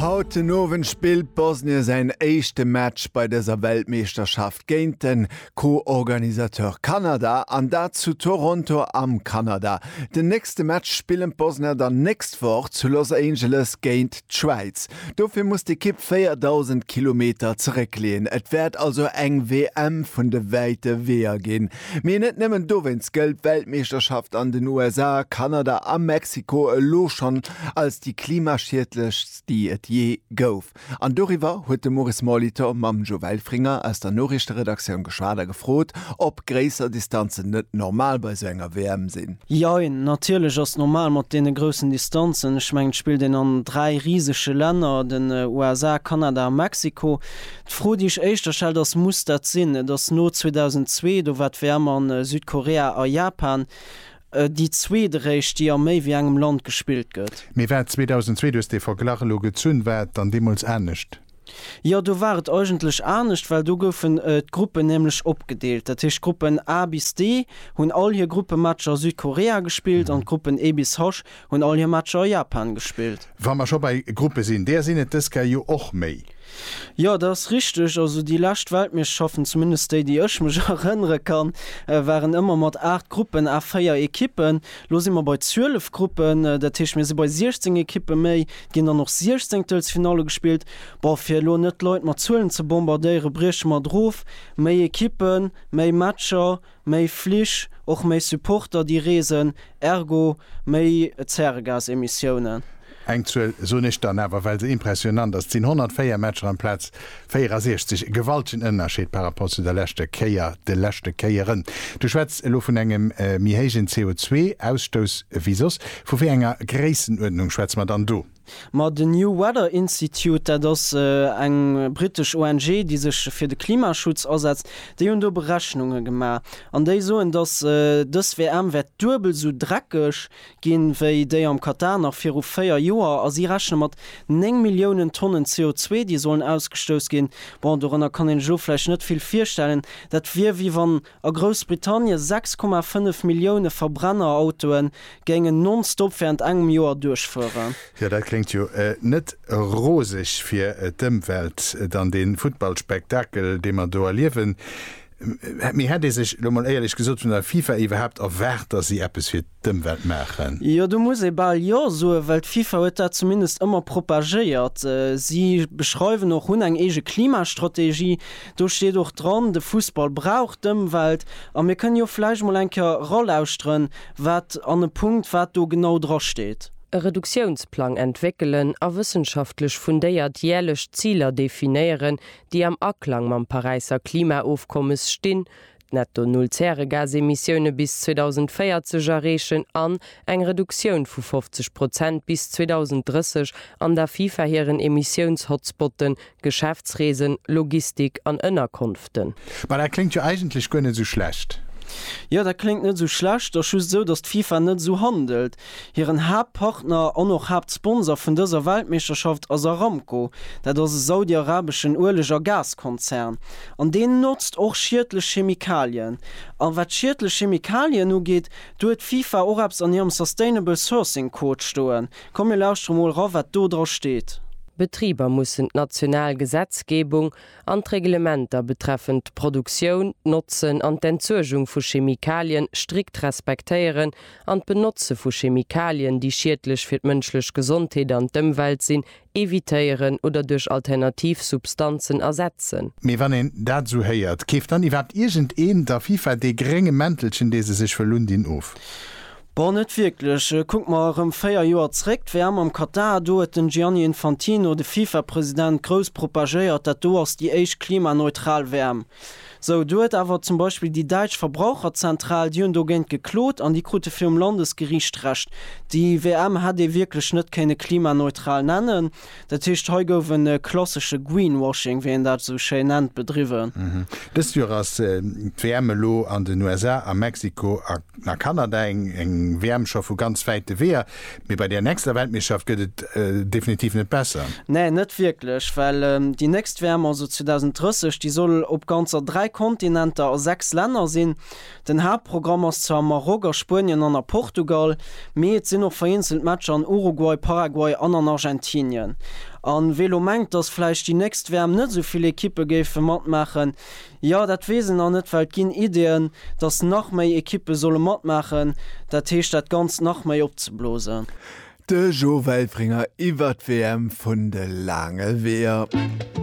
Haut den Owend spillt Bosnien säin éischte Match bei dëser Weltmeeschterschaft géint de Co-Organisateur Kanada, an dat zu Toronto am Kanada. Den nächste Match spillen d'Bosner dann nächst Woch zu Los Angeles géint d'Schwäiz. Dofir muss d'Ekipp 4.000 Kilometer zeréckleeën. Et wäert also eng WM vun de wäite Weeër ginn. Mee net nëmmen dowéinst gëllt d'Weltmeeschterschaft an den USA, Kanada a Mexiko elo schonn als déi klimaschiedlechst, déi et jee gouf. An doriwwer huet de Maurice Molitor mam Joe Welfringer aus der Noriichteredaktioun geschwat a gefrot, ob gréisser Distanzen net normal bei esou enger WM sinn. Jein, natierlech ass normal mat deene groussen Distanzen. Ech mengen, et spillt een an dräi risege Länner, den USA, Kanada a Mexiko. D'Fro, déi ech éischter stellt, ass, Muss dat sinn? Et ass no 2002, do war d'WM a Südkorea a Japan déi zweeteréischt, déi a méi wéi engem Land gespillt gëtt. Mee war 2002, du hues dee Verglach elo gezunn, war et dann deemools anescht? Jo, do war et eigentlech anescht, well do goufen d'Gruppen nämlech opgedeelt. Dat heescht, d'Gruppen A bis D hunn all hir Gruppematcher a Südkorea gespillt an d'Gruppen E bis H Hunn all hir Matcher a Japan gespillt. Wa mer scho bei Gruppe sinn, där sinn et dës Kä jo och méi. Jo, dat ass richteg. Also déi lescht Weltmeeschterschaften, zumindest déi, déi ech mech erënnere kann, waren ëmmer mat 8 Gruppen à 4 Ekippen. Elo si mer bei 12 Gruppen, dat heescht, mir si bei 16 Ekippe méi. Et ginn dann och Siechzéngtelsfinalle gespillt. Bon, fir elo net d'Leit mat Zuelen ze bombardéieren, brieche mer et erof, Méi Ekippen, méi Matcher. Méi Flich, och méi Supporter déi reesen, ergo méi Zäregasemissiounen. Eng Zuel soen ech dann awer, well se impressionant ass, Et sinn 104 Matcher amplaz 64. E gewaltegen Ënnerscheed par rapport zu der leschter Kéier, de leschte Kéieren. Du schwätz elo vun engem méi héijen CO2-Ausstouss ewéi soss. Vu wéi enger Gréissenuerdnung schwätze mer dann do? Ma den New Weather Institute, dat ass eng britesch ONG, déi sech fir de Klimaschutz asetzt, déi hunn do Berechnunge gemaach an déi soen, datt dës WM wäert duebel esou dreckeg ginn, wéi déi am Katar nach viru véier Joer. A si rechne mat néng Milliounen Tonnen CO2, déi sollen ausgestouss ginn. Bon, dorënner kann een sech elo vläicht net vill virstellen. Dat wier, wéi wann A Groussbritannien 6,5 Millioune Verbrennerautoen géingen non-stop während engem Joer duerchfueren. Jo, dat kléngt jo net roseg fir d'Ëmwelt. Dann den Futtballspektakel dee mer do erliewen. Mee hätt ee sech, elo mol éierlech gesot, vun der FIFA iwwerhaapt erwaart, dass si eppes fir d'Ëmwelt maachen. Jo, do muss ee bal Jo soen, well d'FIFA huet dat zumindest ëmmer propagéiert. Si beschreiwen och, hunn eng eege Klimastrategie, do steet och dran, de Fussball brauch d'Ëmwelt. A mir kënnen jo vläicht mol eng Kéier eralauschteren, wat an e Punkt wat do genau dra steet. E Reduktiounsplang entwéckelen a wëssenschaftlech fundéiert järlech Ziler definéieren, déi am Aklang mam Paräisser Klimaofkommes stinn, Netto Null Zäregasemissioune bis 2040 erreechen an eng Reduktioun vu 50 Prozent bis 2030 an der FIFA hiren Emissiouns-Hotspotten, Geschäftsreesen, Logistik an Ënnerkonften. Bah, dat kléngt jo eigentlech guer net esou schlecht. Jo, dat kléngt net esou schlecht, ass just esou, datt d'FIFA net esou handelt. Hiren Haaptpartner an och Haaptsponsor vun dëser Weltmeeschterschaft ass Aramco. Dat ass e saudiarabeschen Ueleg a Gaskonzern. An deen notzt och schiedlech Chemikalien. A wat schiedlech Chemikalien ugeet, do huet d'FIFA och eppes an hirem Sustainable Sourcing Code stoen. Komm mir lauschtere mol ra wat do dra steet. Betriber mussen d'national Gesetzgebung an d'Reglementer betreffend d'Produktioun, d'Notzen an d'Entsuergung vu Chemikalien strikt respektéieren an d'Benotze vu Chemikalien, déi schiedlech fir d'mënschlech Gesondheet an d'Ëmwelt sinn, evitéieren oder duerch alternativ Substanzen ersetzen. Mee wann een dat esou héiert, keeft dann iwwerhaapt iergendeen der FIFA dee grénge Mäntelchen, dee se sech wëll undinn, of? Bon net wierklech. Kuck mer erëm 4 Joer zréck, d'WM am Katar, do huet den Gianni Infantino, de Fifa-President, grouss propagéiert, dat do ass déi éischt klimaneutral WM. Sou, do huet awer zum Beispill déi däitsch Verbraucherzentral, déi hunn dogéint geklot an déi krute virum Landesgeriicht Recht. Déi WM hätt ee wierklech net kéinne klimaneutral nennen. Dat heescht, hei gouf e klassesche Greenwashing, wéi een dat esou schéin nennt, bedriwwen. Dëst Joer ass d'WM elo an den USA, a Mexiko an a Kanada. Eng WM scho vu ganz wäite Weeër, mee bei där nächster Weltmeeschterschaft gëtt et definitiv net besser. Nee, net wierklech, well déi nächst WM, also 2030, déi soll op ganzer dräi Kontinenter a sechs Länner sinn. Den Haaptprogramm ass zwar am Maroc, a Spuenien an a Portugal, mee et sinn och vereenzelt Matcher an Uruguay, Paraguay an an Argentinien. A wee lo mengt, datt vläicht déi nächst WM net esou vill Ekippe géife matmaachen, jo, dat weess en nach net, well et ginn Ideeën, datt nach méi Ekippe solle matmaachen, dat heescht dat Ganzt nach méi opzeblosen. De Jo Welfringer iwwert d'WM vun de laange Weeër.